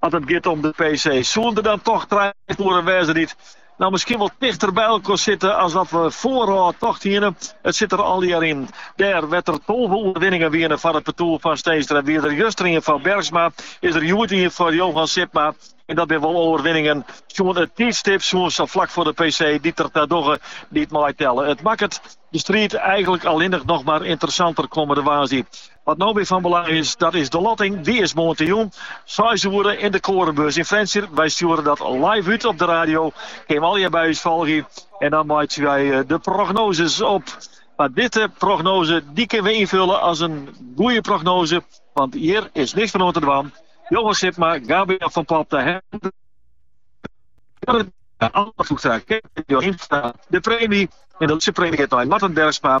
As it giet om de PC, soene der dan toch trije partoeren wêze dy't nou miskien wol tichter by elkoar sitte as dat we foarôf tocht hiene. It sit der allegear yn. Dêr wêr't der tolve oerwinningen wiene foar it partoer fan Steenstra wie der justerien foar Bergsma, is der hjoed ien foar Johan Sipma. En dat binne wol oerwinningen sjoen it tiidstip, sjoen sa flak foar de PC, dy't der ta dogge dy't meitelle. It makket de striid eigenlik allinnich noch mar ynteressanter kommende woansdei. Wat no wer fan belang is, dat is de lotting. Dy is moandeitejûn seis oere yn de Koornbeurs yn Frjentsjer. Wy stjoere dat live út op de radio. Kin allegear by ús folgje. En dan meitsje wy de prognozes op. Mar dizze prognoze dy kinne we ynfille as in goeie prognoze, want hjir is niks fan oan te dwaan. Johan Sipma, Gabe-Jan van Popta, Hendrik Jorrit, Anne Vloegstra, Kees Jorimstra, de premy en de lytse premy giet nei Marten Bergsma.